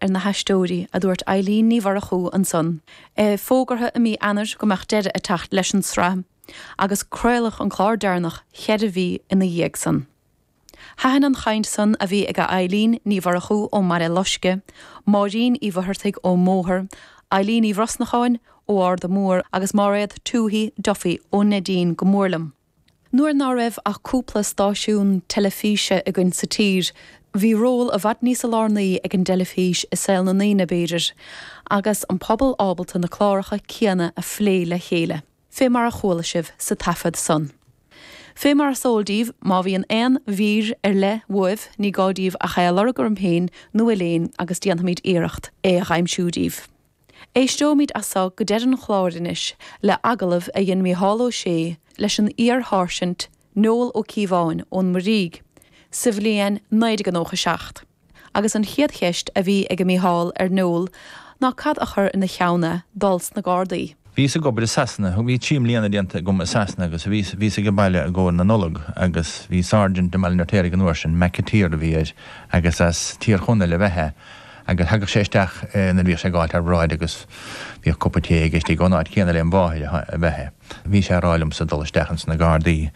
ar na haisteoirí, a dúirt Eilín Ní Mhurchú ansan. Fógraíodh i mí Eanáir go mbeadh deireadh ag teacht leis an tsraith agus craoladh an clár deireanach cheithre mhí ina dhiaidh san. Thaitin an chaint san a bhí ag Eilín Ní Mhurchú ón mBaile Loisce, Máirín Uí Mhuicheartaigh ón mBóthar, Eilín Uí Bhrosnacháin ó Ard Mhór agus Mairéad Toohey Duffy ó Neidín go mór liom. Nuair ná raibh ach cúpla stáisiún teilifíse againn sa tír, bhí ról i bhfad níos lárnaí ag an dteilifís i saol na ndaoine, b'fhéidir, agus an pobal ábalta na cláracha céanna a phlé le chéile. Fé mar a chuala sibh sa taifead san. Fé mar is eol díbh, má bhíonn aon mhír ar leith uaibh, ní gá díbh ach é a lorg orm féin nó Elaine agus déanfaimid iarracht é a aimsiú díbh. Éisteoimid as so go deireadh an chláir anois le hagallamh a dhein Micheál Ó Sé leis an iar-Sháirsint Noel Ó Cíobháin ón Muirígh sa bhliain 1997 agus an chéad cheist a bhí ag Micheál ar Noel ná cad a chur ina cheann é dul sna Gardaí. Bhíos ag obair i Sasana, bhí trí mbliana déanta agam i Sasana agus bhíos, bhíos age baile i gcomhair na Nollag agus bhí sergeant i mBaile na Raiftéaraigh an uair sin, McAteer a bhí air agus as Tír Chonaill ab ea é agus thagadh sé isteach nuair a bhíodh sé ag gabháilt thar bráid agus bhíodh cupán tae aige istigh ón áit chéanna lem mháthair ab ea é. Bhí sé a rá liomsa dul isteach ins na Gardaí.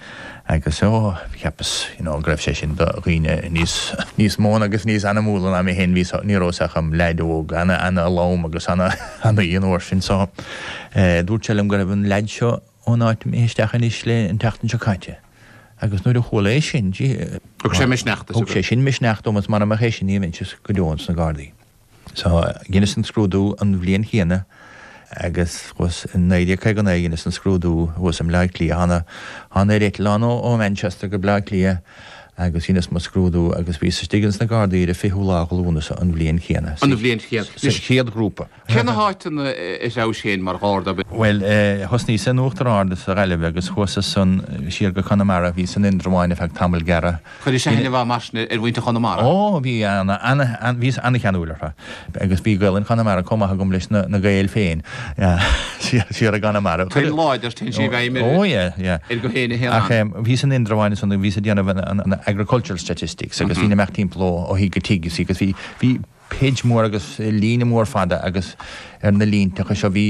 Agus, ó, cheapas, you know, go raibh sé sin do dhaoine níos, níos mó agus níos ainmniúla ná mé féin, bhí so, ní rabhas-sa ach im leaid óg, ana, ana lom agus ana, ana-óg an uair sin. So, eh, dúirt sé liom go raibh an leaid seo ón áit imithe isteach anois leis an tseachtain seo caite. Agus nuair a chualas é sin, gee, eh, Thug sé misneach duit, a. thug sé sin misneach dom agus mara mbeadh é sin, ní bheinnse go deo ins na Gardaí. Sea, dheineas an scrúdú an bhliain chéanna agus thuas i 1959 dheineas an scrúdú thuas i mBleá Cliath. Thána, thána ar eitleán ó, ó Manchester go Bleá Cliath agus dheineas mo scrúdú agus bhíos istigh ins na Gardaí ar an 20ú lá de Lúnasa an bhliain chéanna, An bhliain chéanna. sa Anois, chéad ghrúpa. cé na háiteanna a threabhais féin mar Gharda? Bhuel eh, thosnaíos in Uachtar Ard sa Ghaillimh agus chuas as san siar go Conamara, bhíos in Indreabháin ar feadh tamall gearra, Cuireadh aithne i bhfad mar sin ar mhuintir Chonamara. Ó, bhí ana, bhíos ana-cheanúil orthu. Agus bhí Gaolainn Chonamara chomh maith agam leis na, na Gaeil féin, siar i gConamara. Tuin láidir, tuin i bhfeidhm ar, ar go éinne a théann ann. Ach bhíos in Indreabháin is ansin, bhíos ag déanamh an, an agricultural statistics agus bhínn ag imeacht timpeall ó thigh go tigh, you see, agus bhí, bhí, page mór agus líne mór fada agus ar na línteacha seo bhí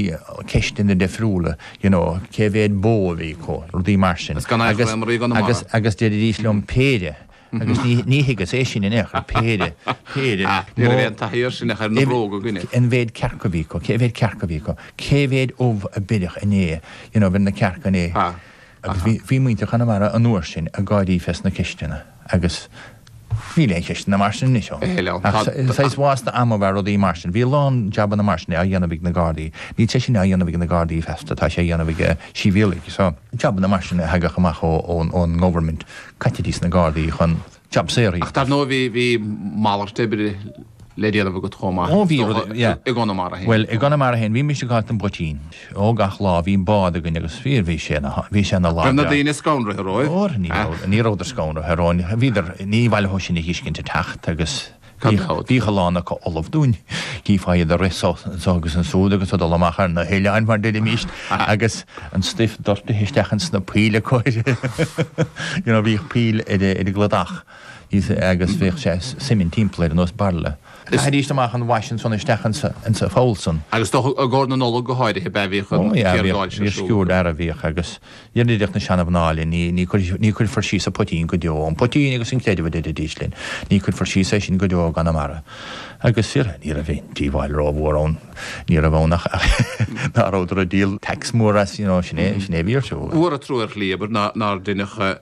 ceisteanna difriúla you know cé mhéad bó a bhí acu, rudaí mar sin. Is gan aon chlé mar i gConamara. Agus deiridís liom péire agus ní thuigeas é sin in aon chor, péire, péire. Ah, ní raibh aon taithí air sin ach ar na bróga againne. An mó cearc a bhí acu, cé mhéad cearc a bhí acu, cé mhéad ubh a beireadh inné, you know, bheir na cearca inné. Agus bhí muintir Chonamara an uair sin ag gáirí fés na ceisteanna agus Níl aon cheisteanna mar sin anois ann. Níl ann. Ach saghas vásta ama ab ea rudaí mar sin. Bhí a lán jabanna mar sin á dhéanamh ag na Gardaí. Níl sé sin á dhéanamh ag na Gardaí feasta, tá sé á dhéanamh ag sibhialaigh. So, jabanna mar sin a thagadh amach ón nGovernment, caití dtís na Gardaí chun jab saor. Ach dar ndóigh, bhí malairt oibre le déanamh agat chomh maith i gConamara féin. Bhuel, i gConamara féin, bhíos-sa ag gabháilt don bpoitín. Ó, gach lá bhíodh bád againn agus fíor bhí sé ina, bhí sé ina Raibh na laghdán. daoine scanraithe romhaibh? Ó, ní raibh, ní rabhadar scanraithe romhainn, bhíodar, ní mhaith leothu sinn a fheiscint ag teacht agus Gan bhíodh, dabht. bhíodh a lán acu ullamh dúinn. Chífeá iad ag rith so, anso agus ansúd agus ag dul amach ar na hoileáin mar deirimíst agus an stuif doirtithe isteach in sna poill acu, you know, bhíodh poill ar a, ar an gcladach agus bhíodh sé suimint timpeall air ar nós bairille. Chaithidís amach an wash ansan isteach insa pholl san. Agus is dócha i gcomhair na Nollag go háirithe, ab ea, bhíodh an tiargáil seo ar siúl. Ó, bhíodh, bhíodh sciúird fhear a bhíodh agus déarfadh na seana-mhná linn, ní, ní, ní chuirfear síos an poitín go deo, an poitín agus an creideamh a deiridís linn, ní chuirfear síos é sin go deo i gConamara. Agus fíor, ní raibh aon díobháil ró-mhór ann, ní raibh ann ach, ach ná rabhadar ag díol tax mór as, you know, sin é, sin é a bhí ar siúl. Ba mhór an trua ar shlí, abair, nár deineadh.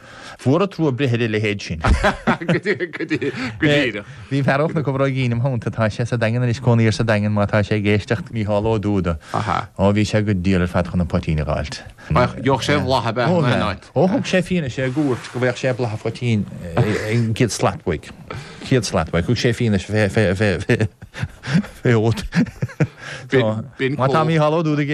Ba mhór an trua breith ar a leithéid sin. Go díreach. Bhí fear óg ó Chorca Dhuibhne im theannta, tá sé sa Daingean anois, cónaí air sa Daingean, má tá sé ag éisteacht, Micheál Ó Dubhda. Ó, bhí sé go diail ar fad chun an poitín a dh'fháilt. Gheobhadh sé a bholadh ab ea? Ó, gheobhadh. Ó, thug sé fianaise i gcúirt go bhfaigheadh sé boladh an phoitín céad slat uaidh. Céad slat uaidh. Thug sé fianaise fé fhéachaint. B'in cú. Má tá Micheál Ó Dubhda ag.